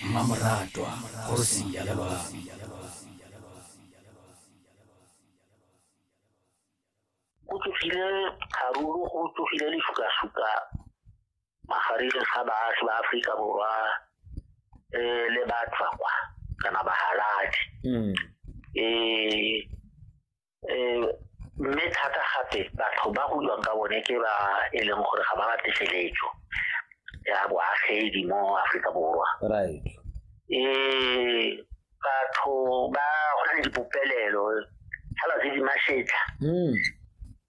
mmamoratwa kgosi ya lelwang go tsogile kgaruru go tsogile lefukasuka magareng ga baagi ba aforika borwa um le batswakwa kana bahaladi um hmm. eh, um mme thata gape batho ba go buang ka bone ke ba e leng gore ga ba batle feletso ya boagedi mo aforika borwa right um batho ba go na le dipopelelo fela tse di masetlha hmm.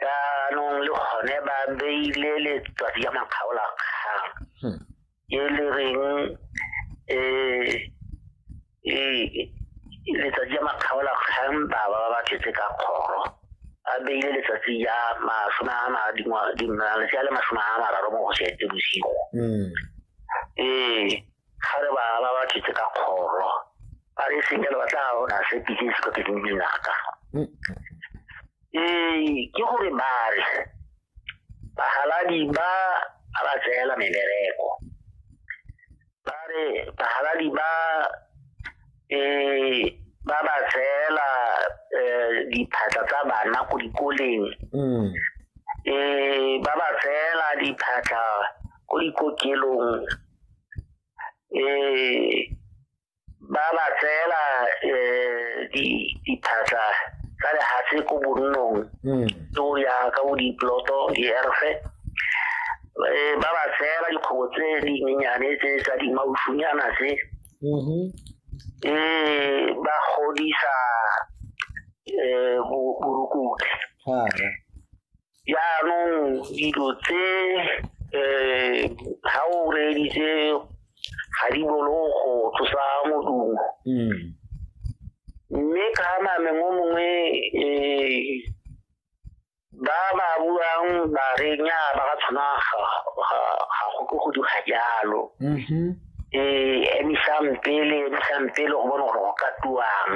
jaanong le gone ba beile letsatsi ya makgaolakgang hmm. e le reng eh e letsatsi ya makgaola kgang ba ba ba tletse ka kgoro a beile letsatsi ya masome a ma dingwa malatsi a le masome a mararo mo go setse bosigo Mm. ee ga re ba ba ba tletse ka kgoro ba re sengele ba tla ona se pitse se ka pitse dinaka Mm. ee ke gore ba re bahaladi ba a ba tseela mebereko ba re bahaladi ba eh ba ba tseela eh, diphatla tsa bana ko dikoleng mm. eh ba ba tseela diphatla ko dikokelong eh ba ba tseela um diphatlha tsa lehatshe ko bonnong hmm. ke o ya ka bo diploto dierfe eh, ba ba tseela dikgobo tse dinyenyane tse tsa dimausunyana tse mm-hmm. eh, ba godisa um borukutlhi jaanong dilo tse um ga o reeditse ga di bolo go tlosa modumo hmm. mme ka name mo mongwe um ba ba buang ba re nya ba ka tshwana ga go ke go diga jalo um mm-hmm. emisang pele emisang pele go bone gore go ka tuang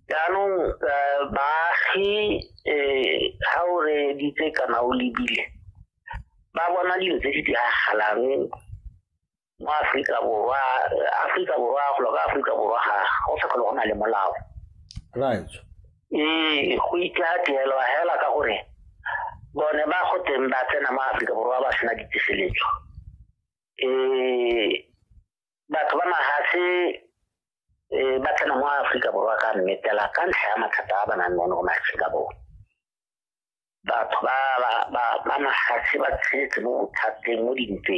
jaanong eh, baagi um ga o reeditse kana o lebile ba bona dilo tse di diragalang mo aforika borwa aforika borwa golo ka aforika borwa ga go sa kgolo go na le molao right ee go itla tirelo hela ka gore bone ba go teng ba tsena mo aforika borwa ba sena ditiseletso um batho ba mahatlhe um ba tsena mo aforika borwa ka mmetela ka ntlha ya mathata a ba nang le one go maaforika borwa batho ba mahatlhe ba tshetse mo bothateng mo dintweng